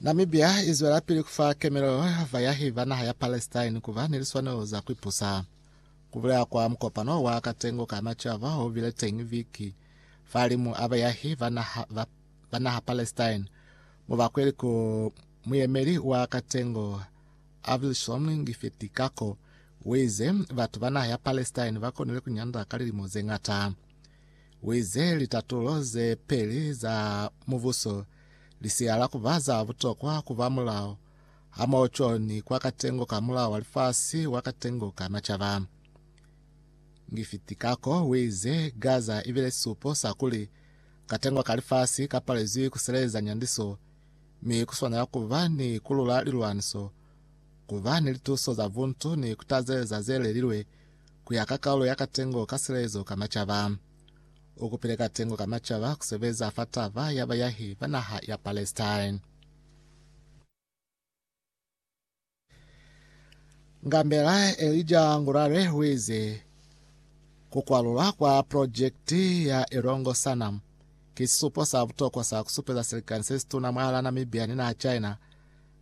Namibia izwelapili kufa kemelo vayahi ba naha ya Palestine kuba ni liswanelo za kuipusa. Kubulela kwa mukopano wa katengo ka macaba obile teñi viki falimu a bayahi ba naha, ba, ba naha Palestine, mubakweli ku muyemeli wa katengo Avishom Ngifetikako uize batu ba naha ya Palestine bakonile kunyanda ka lilimo zeñata. Uize litatulo ze peli za mubuso lisihala kuba za butokwa kuba mulao hamoho co ni kwa katengo ka mulao wa lifasi wa katengo ka macaba. Ngifiti kako uize Gaza ibile sisupo sa kuli katengo ka lifasi ka palezwi kuseleza nyandiso mi kuswanela kuba ni kulula lilwaniso, kuba ni lituso za buntu ni kutazeleza zelelilwe ku ya ka kaulo ya katengo ka silelezo ka macaba. U kupile katengo ka macaba ku sebeza fa taba ya bayahi ba naha ya Palestine. Ngambela Elija Ngurare u ize, Ku kwalulwa kwa projekiti ya Elongo Sanam ki sisupo sa butokwa sa ku supeza silikani se situna mwalaa Namibia ni naha China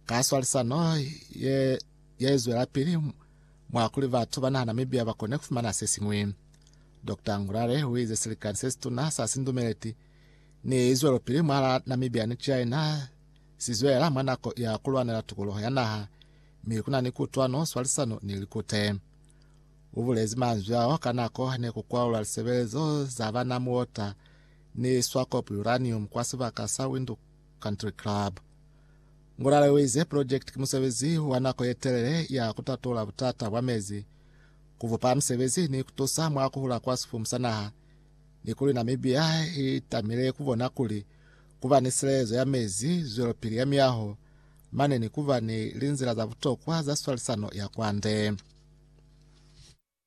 ka swalisano ye, ye zwelapili mwa kuli batu ba naha Namibia ba kone ku fumana se siñwi. Dokta Ngurare u ize silikani se situna sa sindumeleti ni zwelopili mwala Namibia ni China si zwelela mwa nako ya ku lwanela tukuluho ya naha, mi ku na ni kutwano, swalisano ni likute. U bulezi manzwi ao ka nako ne ku kwaulwa lisebelezo za bana muota ni Swakop Uranium kwa sibaka sa Windhoek Country Club. Ngulale uize, Pulojekiti ki musebezi wa nako yetelele ya kutatula butata bwa mezi, kubupa misebezi ni kutusa mwa kuhula kwa sifumu sa naha, ni kuli Namibia itamile kubona kuli kuba ni silelezo ya mezi, zwelopili ya miyaho, mane ni kuba ni linzila za butokwa za swalisano ya kwande.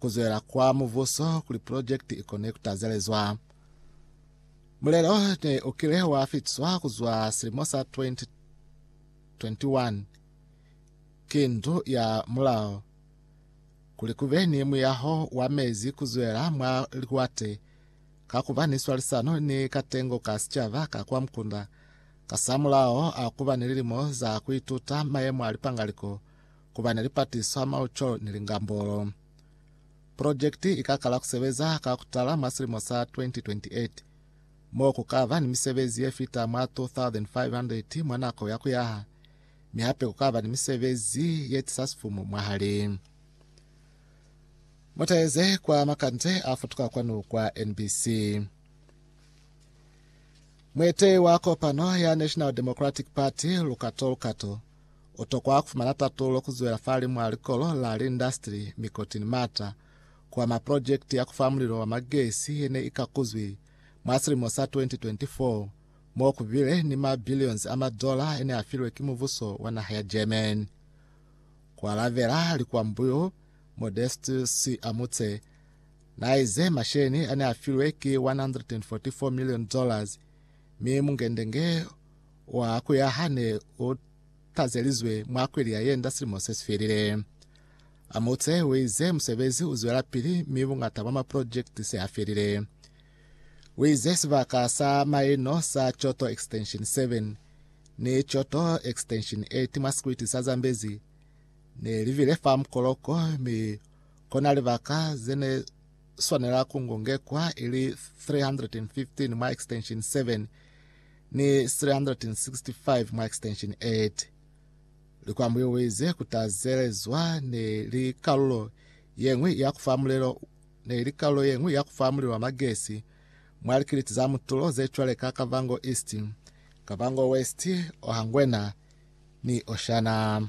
Ku zwela kwa Mubuso kuli pulojekiti i kone ku tazelezwa. Mulelo ne u kile wa fitiswa ku zwa silimo sa 2021 ki Ndu ya Mulao kuli ku be ni muyaho wa mezi ku zwela mwa liwate ka ku ba ni swalisano ni katengo ka sicaba ka kwa mukunda kasamulaho a ku ba ni lilimo za ku ituta mayemo a lipangaliko ku ba na lipatiswa, mauco ni lingambolo. Projekiti i ka kala ku sebeza ka ku tala mwa silimo sa 2028, mo ku ka ba ni misebezi ye fita mwa 2,500 mwa nako ya ku yaha, mi hape ku ka ba ni misebezi ye tisa sifumu mwahali. Mutaeze kwa makande a futuka kwanu kwa NBC. Mueteyi wa kopano ya National Democratic Party, Lukato Lukato, U tokwa ku fumana tatulo ku zwela fahali mwa likolo la liindastri mi koti ni mata ku ama projekiti ya ku fa mulilo wa magesi ye ne i kakuzwi mwa silimo sa 2024 mo ku bile ni ma billions a madola e ne a filwe ki mubuso wa naha ya Germany. Ku alabela likwambu yo, Modestus Amutse na ize masheleni a ne a filwe ki 144 million dollars mi mungendenge wa kuya hane u tazelizwe mwa kweli ya yenda silimo se sifelile. Amutse uize musebezi uzwela pili mi bungata bwa maprojekiti se afelile. Uize sibaka sa maino sa Choto Extension 7 ni Choto Extension 8 mwa sikwiti sa Zambezi ne livile fa mukoloko mi kona libaka zene swanela kungungekwa ili 315 mwa Extension 7 ni 365 mwa extension 8. Likwambo yo waize ku tazelezwa ne li kalulo ye ñwi ya ku fa mulelo ne li kalulo ye ñwi ya ku fa mulilo wa magesi mwa likiliti za mutulo ze cwaleka Kavango East, Kavango West, Ohangwena ni Oshana.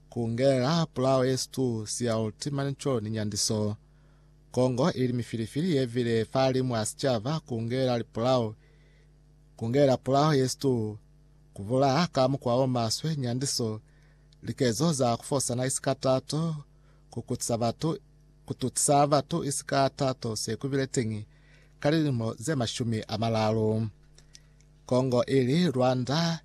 Ku ngelela pulao ye situ sia ultimani co ni nyandiso. Kongo ili mifilifili ye vile fahalimu a sicaba ku ngelela lipulao. Ku ngelela pulao ye situ, ku bulaha ka mukwa o maswe, nyandiso, likezo za ku fosana isi ka tato, ku kutisa batu, ku tutisa batu isi ka tato se ku bile teñi ka lilimo ze mashumi a malalu. Kongo ili Rwanda.